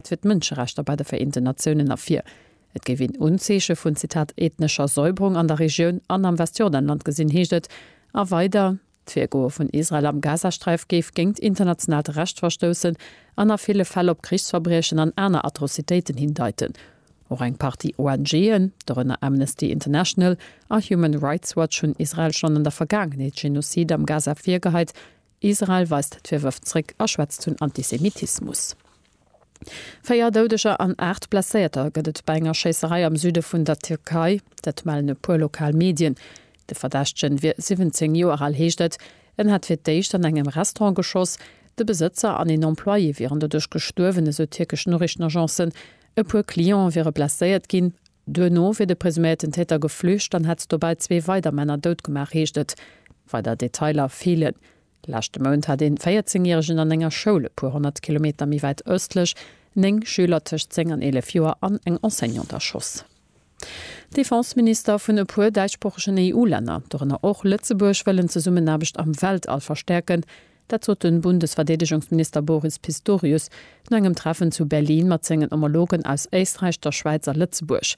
fir d'Mënscherechter bei de Vereenten Natiounen ervir. Et géif een Unzeeche vun, Zitat, ethnescher Säuberung an der Regioun an am Westjordanland gesinn, heescht et. A weider, D'Virgoe vun Israel am Gazasträif géif géingt internationaalt Recht verstoussen an a ville Fäll op Krichsverbriechen an aner Atrocitéiten hindeiten. Och eng Partie ONG'en, dorënner Amnesty International a Human Rights Watch, hunn Israel schonn an der Vergaangenheet Genozide am Gaza virgeheit, Israel weist d'Virwërf zréck a schwätzt vun Antisemitismus. Véier Doudeger an aacht Blesséierter gëtt et bei enger Schéisserei am Süde vun der Tierkei. Dat mellen e puer lokal Medien. De Verdächtegen wier 17 Joer al, heescht et. En hätt fir d'éischt an engem Restaurant geschoss. De Besëtzer an een Employé wieren doduerch gestuerwen, esou tierkesch Noriichtenagencen. E puer Cliente wiere blesséiert ginn. Duerno wier de presuméierten Täter geflücht an hätt dobäi zwee weider Männer dout gemaach, heescht et. Weider Detailer feelen. Leschte Mount hat een 14 Järegen an enger Schoul e puer honnert Kilometer méi wäit ëstlech néng Schüler tëscht 10 an 11 Joer an eng Enseignante erschoss. Defenseminister vun e puer däitschsproochegen EU-Länner, dorënner och Lëtzebuerg, wëllen d'Zesummenaarbecht am Weltall verstäerken, Dat sot de Bundesverdeedegungsminister Boris Pistorius no engem Treffen zu Berlin mat sengen Homologen aus Éisträich, der Schwäiz a Lëtzebuerg.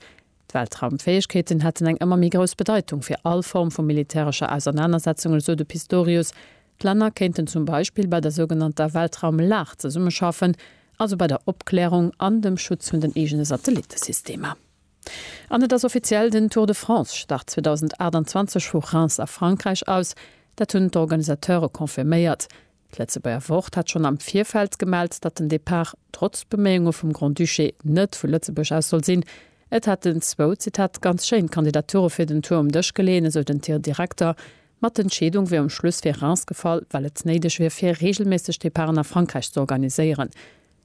D'Weltraumfäegkeeten hätten eng ëmmer méi grouss Bedeitung fir all Form vu militärescher Ausernanersetzungen, esou de Pistorius. D'Länner kéinten zum Beispill bei der sougenannter Weltraumlag zesummeschaffen, also bei der Opklärung an dem Schutz vun den eegene Satellittesystemer. An et ass offiziell, den Tour de France start 2028 vu Reims a Frankräich aus. Dat hunn d'Organisateure confirméiert. D'Lëtzebuerger Wort hat schonn am Virfeld gemellt, datt den Depart trotz Beméiunge vum Grand-Duché net vu Lëtzebuerg aus soll sinn. Et hätten zwou, Zitat, ganz schéin Kandidature fir den Tour um Dësch geleeën, esou den Tir-Direkter. Ma d'Entscheedung wier um Schluss fir Reims gefall, well et néideg wier, fir reegelméisseg Departen a Frankräich z'organiséieren.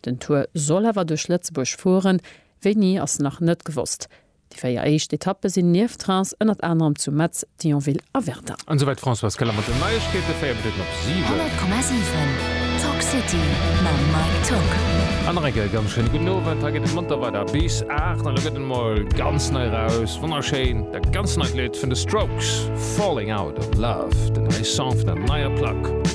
Den Tour soll awer duerch Lëtzebuerg fueren, wéini ass nach net gewosst. Déi véier éischt Etappe sinn nieft Reims ënnert anerem zu Metz, Thionville a Verdun. An esouwäit d'Françoise Keller mat den Neiegkeeten, 4 Minutten op 7. 100,7 Talk City mam Mike Tock. An nach eng Kéier e ganz schéine gudden Owend. Hei geet et monter weider bis 8 an elo gëtt et emol ganz nei eraus, wonnerschéin, dat ganz neit Lidd vun The Strokes, Falling Out of Love, den neie Song vun der neier Plack.